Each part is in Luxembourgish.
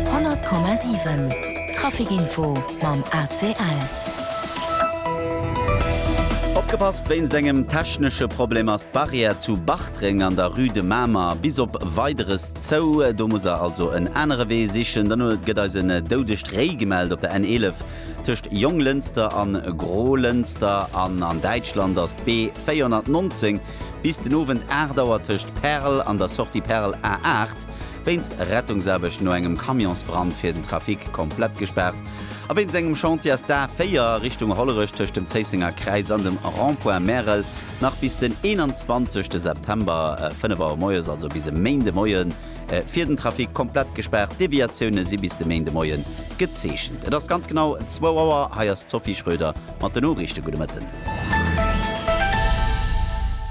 100,7 Traficinfo mam ACL. Opgepasst, Wéinst engem technesche Problem ass d'Barrière zu Bartreng an der Rue de Mamer bis op Weideres zou. Do musst der also en anere Wee sichen. Dann huet gëtt eis en doudegt Réi gemellt op der N11 tëscht Jonglënster an Grolënster. An an Däitschland ass d'B 419 bis den Owend 8 Auer tëscht Perl an der Sortie Perl A8 Stad, wéinst Rettungsaarbecht no engem Camionsbrand fir den Trafic komplett gespaart a wéinst engem Chantier ass d'A 4 Richtung Hollerech tëscht dem Zéissenger Kräiz an dem Rond-point Märel nach bis den 21 September 5 Auer moies, also bis e Méinde Moien, fir den Trafic komplett gespaart. D'Deviatioune si bis de Méinde Moie gezeechent. Et ass ganz genau zwou Auer. Hei ass d'Sophie Schröder mat den Noriichte. Gudde Mëtten.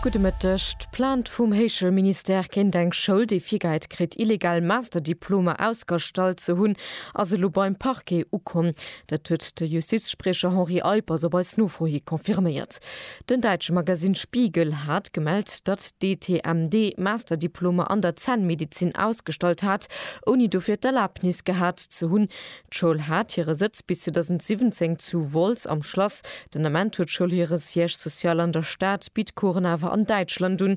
Gudde Mëtteg. D'Plainte vum Héichel Ministère géint eng Schoul, déi virgehäit kritt, illegal Masterdiplomer ausgerstallt ze hunn, ass elo beim Parquet ukomm. Dat huet de Justizspriecher Henri Eippers op eis Nofro hi confirméiert. Den däitsche Magasinn Spiegel hat gemellt, datt d'ETMD Masterdiplomer an der Zännmedezin ausgestallt hat, ouni dofir d'Erlaabnis gehat ze hunn. D'Schoul hat hire Sëtz bis 2017 zu Wolz am Schlass. Den Ament huet d'Schoul hire Siège social an der Stad, bitt Coursen awer an Däitschland un.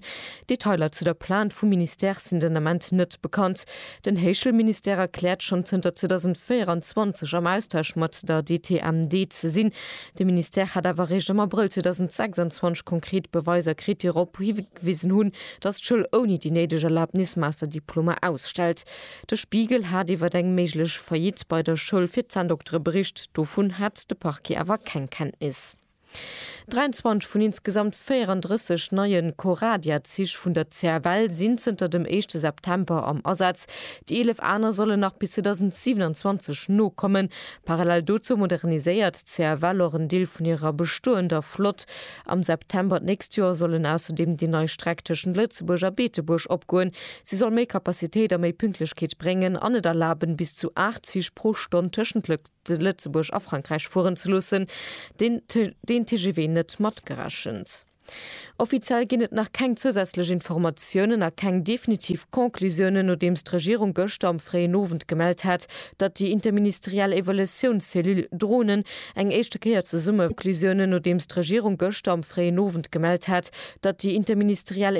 Detailer zu der Plainte vum Ministère sinn den Ament net bekannt. Den Héichschoulministère erkläert, schonn zënter 2024 am Austausch mat der DTMD ze sinn. De Ministère hätt awer eréischt am Abrëll 2026 konkret Beweiser kritt, déi drop higewisen hunn, datt d'Schoul ouni déi néideg Erlabnis Master-Diplomer ausstellt. De Spiegel hat iwwer eng méiglech Faillite bei der Schoul fir Zänndoktere bericht, dovun hat de Parquet awer keng Kenntnis. 23 vun insgesamt 34 neie Coradia-Zich vun der CFL sinn zënter dem éischte September am Asaz, déi 11 aner sollen nach bis 2027 nokommen. Parallel dozou moderniséiert d'CFL och en Deel vun hirer bestoender Flott. Am September d'nächst Joer sollen ausserdeem déi nei Streck tëschent Lëtzebuerg a Beetebuerg opgoen. Si soll méi Kapazitéit a méi Pünktlechkeet bréngen an et erlaben, bis zu 8 Zich pro Stonn tëschent Lëtzebuerg a Frankräich fueren ze loossen, den TGV net matgerechent. Offiziell ginn et nach keng zousätzlech Informatiounen a keng definitiv Conclusiounen, nodeems d'Regierung gëschter am fréien Owend gemellt hat, datt déi interministeriell Evaluatiounscellule Dronen eng éischte Kéier zesumme Conclusiounen, nodeems d'Regierung gëschter am fréien Owend gemellt hat, datt déi interministeriell.